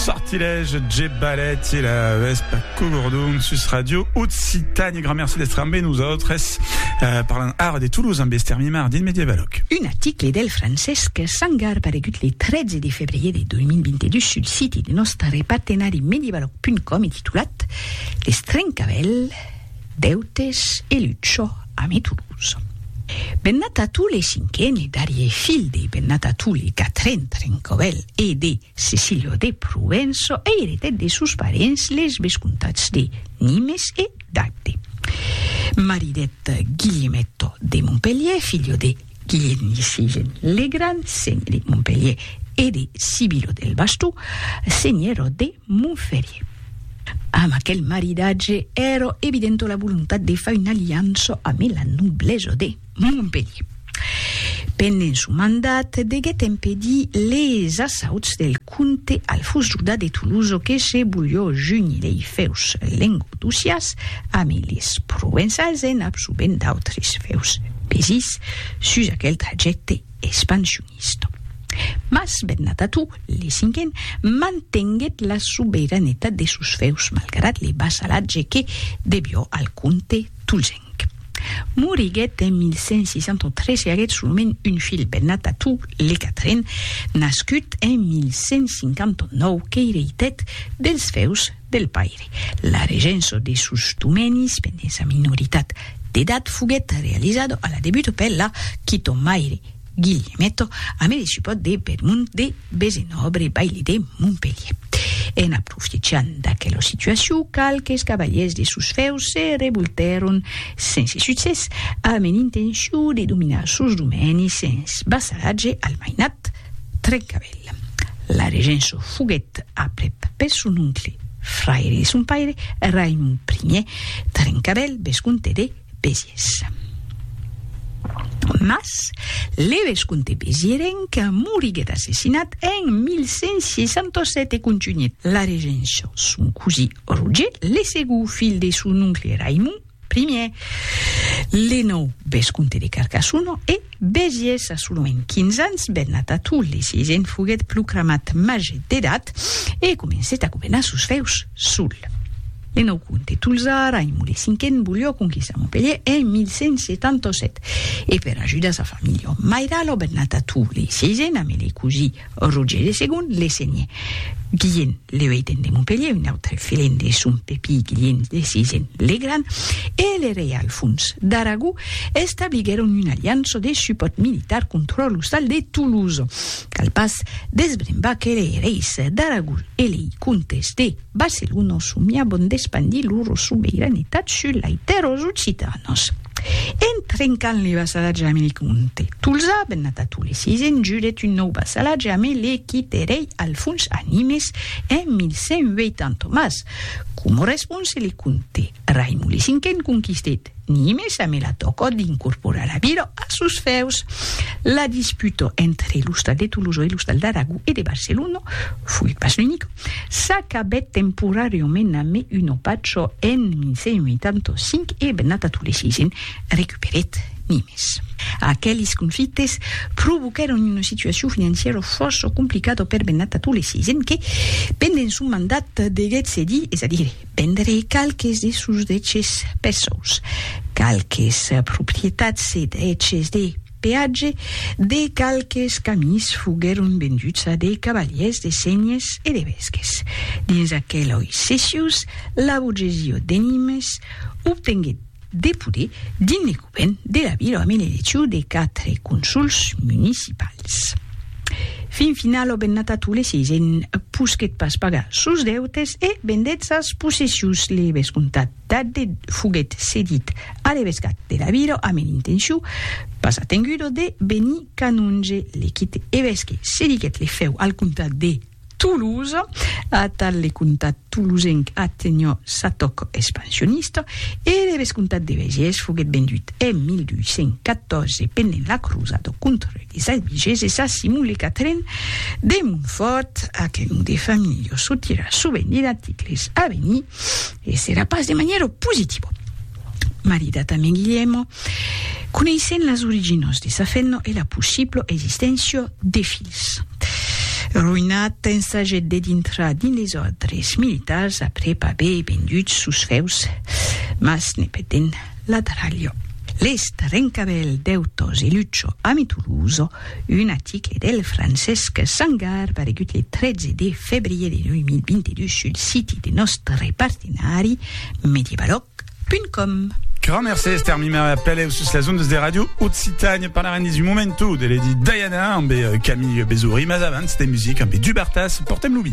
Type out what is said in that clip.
Sortilège, J. Ballet i la Vespa Cogordon sus Radio Occitània. Grand merci d'estre amb nosaltres. Eh, parlant ara de Toulouse amb Esther Mimard dins Medievaloc. Un article del Francesc Sangar paregut le 13 de febrier de 2022 sul siti de nòstre partenari medievaloc.com e titulat Les Trencavèls, Deutes e Lucho ame Toulouse. Bennatatule cinquen e darrier filh de Bennatatule Catrin Trencobel e de Cecilio de Provenço e eretèt de sos parents les vescomtats de Nimes e d'Agde. Maridèt Guilhemetto de Montpelhier, filho de Guilhèmi Sivent Legrand, senhor de Montpelhier e de Sibilo del Bastó, senhora de Montferrier. Amb aquel maridatge èra evidenta la volontat de far una aliança amé la noblesa de Montpelhier. Pendent son mandat deguèt empedir les assauts del Comte Alfons Juda de Toulouse que se bulhó junir lei feus lengodossias ame les provençals en absorbent d'autres feus pesits sus aquel trajècte expansionista. Mas Bernat Atú, le cinquen, mantenguèt la sobeiranetat de sos feus malgrat le vassalatge que debió al comte. Tolgenc. Moriguèt en 1163 e aguèt solament un filh, Bernat Atú, le quatren, nascut en 1159, qu'eireitèt dels fèus del paire. La regença de sos domenis pendent sa minoritat d'edat foguèt realizada a la debut per la quitomaire, Guillemèto a me discipòt de Belmont de Besenòbre, baile de Montpelhier. En aprofitjant d'aquela situacion, qualques cavalièrs de sos fèus se revoltèron, sense succès, amb en intencion de dominar sos domènis sens vassalatge al mainat Trencavèl. La regença foguèt aprèp per son oncle, fraire de son paire, Raimond Ier Trencavèl, vescomte de. Besies. Mas, le vescomte Bezierenc moriguèt assassinat en 1167 e contunhèt la regéncia son cosí Roger, le segó filh de son oncle Raimon I, le nòu vescomte de Carcassona e, Besies a solament 15 ans, bennat a Tolly, si se'n foguèt proclamat màger d'edat e comencèt a governar sos fèus sol. Le nòu comte de Tolzar, Raimond le Cinquen, volió conquistar Montpelhier en 1177 e per ajudar sa familha mairala, bennat a Tolly, si se'n amèlèt cosí, Roger de Segon le senhe. Guilhen le Ueiten de Montpelhier, un autre filhen de son pepí Guilhen de Sisen le Gran, e le rei Alfons d'Aragó establiguèron un aliança de supòrt militar contra l'ostal de Toulouse. Cal pas desbrembar que lei reis d'Aragó e lei comtes de Barcelona somiavan d'espandir lor sobeiranetat sus lai tèrras occitanas. En trencant le vassalatge ame le comte Tolzà, bennat a Tole se s'enjulèt un nòu vassalatge ame le quite rei Alfons Animes en 1180, mas, coma response, le comte Raimon le Cinquen conquistèt Nimes ame la tòca d'incorporar la vila a sos fèus. La disputa entre l'ostal de Tolosa e l'ostal d'Aragó e de Barcelona foguèt pas l'unica. S'acabèt temporàriament a me un opatjo en 1185 e Bennatatule vi recuperèt Nimes. Aqueles conflictes provoquèron una situacion financièra fòrça complicada per Bennatatule vi que, pendent son mandat, deguèt cedir, es a dire, vendre qualques de sos deches perçaus. Qualques proprietats e deches de. peatge de qualques camins foguèron venduts a de cavalièrs de Senhes e de Vesques. Dins aquel òi cessius, la borgesiò de Nimes obtenguèt de poder dins le govèrn de la vila amb l'elecciu de quatre consols municipals. Fin final, lo bennata Tule vi posquèt pas pagar sos deutes e vendèt sas possessius. Le vescomtat Tardè foguèt cedit a l'evescat de Laviro amb un intenciu, pas atengudo, de benir canonge. Lequit evesque cediguèt le fèu al comtat de Toulouse. Atal le comtat toulousenc atenhò sa tòc expansionista e l'evescomtat de Bèges foguèt vendut en 1214 pendent la crosada contra les Albigeses a Simon le Quatren de Montfòrt, aquel nom de familha sotirà sovent en articles a venir. E serà pas de maniero positivo. Marida tanben Guilliemo, coneissent las originos de sa fenno e la possiblo existéncia de filhs. Roinat ensagèt de dintrar dins les òrdres militars après p'aver vendut sos feus, mas ne perdent la darralha. Lèst rencavèl d'Eutòs e Lucho a Mituluso Un aticle del Francesc Sangar paregut le 13 de febrier de 2022 sul siti de nòstre partenari Medievalòg.com. Grand mercé Esther Mimer e apeleu sus las ondas de Radio Occitània. Parlarem dins un momentu de Lady Diana ambe Camille Bezory, mas abans de musica ambe Dubartas, portem lo vi.